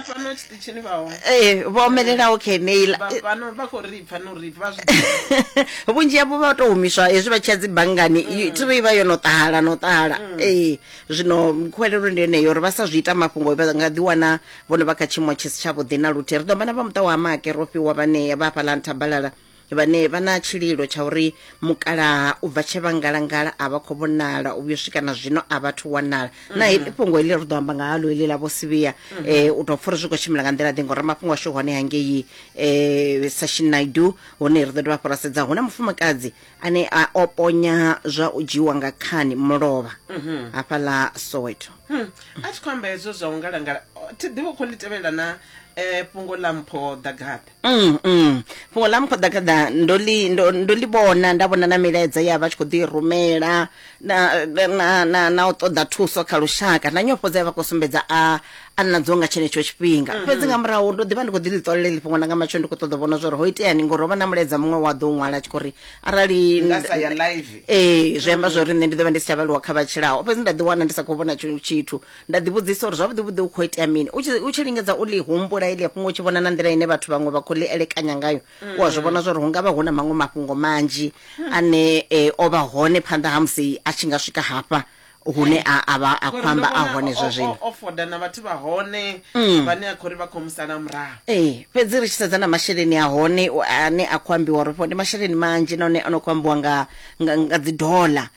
fhano tshiṱitshini vha hone ee vho omelelaho kha eneila vha fhano vha khou ri pfa no ri vha zwi ḓivha. vhunzhi havho vha tou humiswa hezwi vha tshiya dzi banngani i- thi ri vha yo no ṱahala no ṱahala ee zwino khwelelo ndi yeneyo uri vha sa zwi ita mafhungo vha nga ḓi wana vhono vha kha tshiimo tshi si tshavhuḓi na luthihi ri ḓo vha na vha muṱa wa make ro fhiwa vhanea vha hafhaḽa nthabalala vhane vha na tshililo tsha uri mukalaha u bva tshe vha ngalangala a vha khou vhonala u vhuyo swika na zwino a vhathu wanala mm-hmm. na heḽi fhungo heḽi ri ḓo amba nga halo heḽi ḽa vho sivhiya um mm-hmm. eh, u tou pfha uri zwi khou tshimbila nga nḓila ḓi ngori mafhungo ashu hone hangei um eh, sashin naidu hone ri ḓo dovha fho ra sedza hu na mufumakadzi ane a o ponya zwa u dzhiiwa nga khani mulovha mm-hmm. hafha ḽa soweto hmm. a thi khou amba hezwo zwa u ngalangala thi ḓivha u khou ḽi tevhelela na um fhungo ḽa mpho ḓagabe Mm, mm. fhungo ḽa mukhoḓakhaḓa ndo ḽi ndo ndo ḽi vhona nda vhona na milaedza ya vha tshi khou ḓi i rumela na na na na u ṱoḓa thuso kha lushaka na nyofho dza vha khou sumbedza a a nadzo nga tshenetsho tshifhinga fhedzi nga murahu ndo ḓivha ndi khou ḓi ḽi ṱolela ḽi fhungo ḽa nga matsho ndi khou ṱoḓa u vhona zwori ho iteani ngori ho vha na mulaedza muṅwe wa ḓo u ṅwala a tshi khou ri arali Nga sa ya live. ee zwi amba zwori nṋe ndi ḓo vha ndi si tsha vhaliwa kha vha tshilaho fhedzi nda ḓi wana ndi sa khou vhona tshi- tshithu nda ḓivhudzisa uri zwavhuḓi vhuḓi u khou itea mini u tshi u tshi lingedza u ḽi humbula ili a fhungo u tshi vhona na nḓila ine vhathu vhaṅwe vha khou ḽi elekanya ngayo u a zwi vhona zwa uri hu nga vha hu na maṅwe mafhungo manzhi ane eh, o vha hone phanḓa ha musi a tshi nga swika hafha hune a a vha a khou Ngori ndo amba a vhona hone o- zwa o- zwino o foda na vhathu vha hone vhane a khou ri vha khou mu sala murahu ee fhedzi ri tshi sedza na masheleni a hone u- ane a khou ambiwa uri fho ndi masheleni manzhi nahone a no khou ambiwa nga nga nga dzi dollar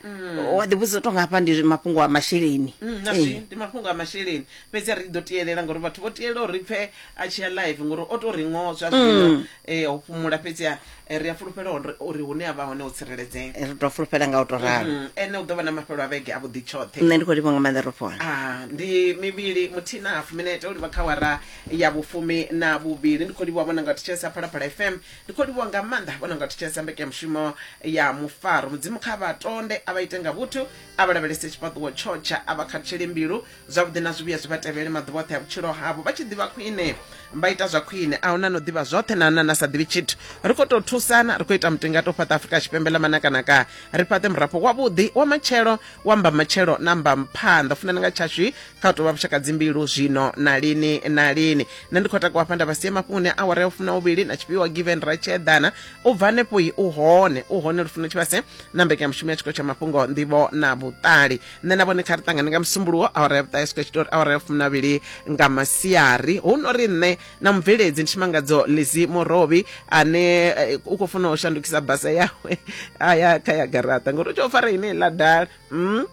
wa ḓi vhudzisa tonga hafha ndi mafhungo a masheleni Mm, na zwi Eh. ndi mafhungo a masheleni fhedzi a ri ḓo tielela ngori vhathu vho tielela uri pfe a tshi ya live ngori o to ri ngo zwa zwino Mm. eh, ho fhumula fhedzi a- eh, ri a fulufhela uri- uri hune a vha hone ho tsireledzea Eh, ri to fulufhela nga u to ralo Mm, ene u ḓo vha na mafhelo a vhege a vhuḓi tshoṱhe nṋe ndi khou livha nga maanḓa ro fona Ah, ndi mivhili muthihi na hafu minete u livha kha wara ya vhufumi na vhuvhili ndi khou livha vhona nga thetshelesa phalaphala fm Ndi khou livhuwa nga maanḓa vho no nga thetshelesa mbekanyamushumo ya mufaro. Mudzimu kha vha tonde, a vha ite nga vhuthu, a vha lavhelese tshifhaṱuwo tsho tsha, a vha khathutshele mbilu. Zwavhuḓi na zwivhuya zwi vha tevhele maḓuvha oṱhe a vhutshilo havho, vha tshi ḓivha khwine vha ita zwa khwine. A hu na no ḓivha zwoṱhe na na na sa ḓivhi tshithu. Ri khou tou thusana, ri khou ita mutingato u fhaṱa Afrika Tshipembe ḽa manakanaka, ri fhaṱe murafho wavhuḓi wa matshelo, wa mbamatshelo na mbamphanḓa. Funani nga tshashu kha u tovha vhushaka dzimbilu zwino na lini na lini nṋe ndi khou takuwa hafha nda vhasie mafhungoni a awara ya fumna uvhili na tshifhiwa given ra tshi eḓana u bva hanefho i u hone u hone lufuno tshivhase na mbekanyamushumo ya tshikolo tsha mafhungo nḓivho na vhuṱali nṋe na vhone kha ri ṱangane nga musumbuluwo awara ya vhuṱahe sukwe tshitori awara ya fumna vhili nga masiari hu no ri nṋe na mubveledzi ndi tshimangadzo lizi murovhi ane eh, u khou funa u shandukisa basa yawe a ya kha ya garaṱa ngori u tshi o fara ine ḽa dala Mm?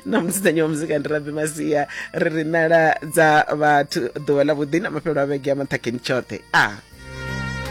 na musidzanyi wa muzika ndi rabi masia ri ri nala dza vhathu ḓuvha ḽa vhuḓi na mafhelo a vhege ya maṱhakheni tshoṱhe a ah.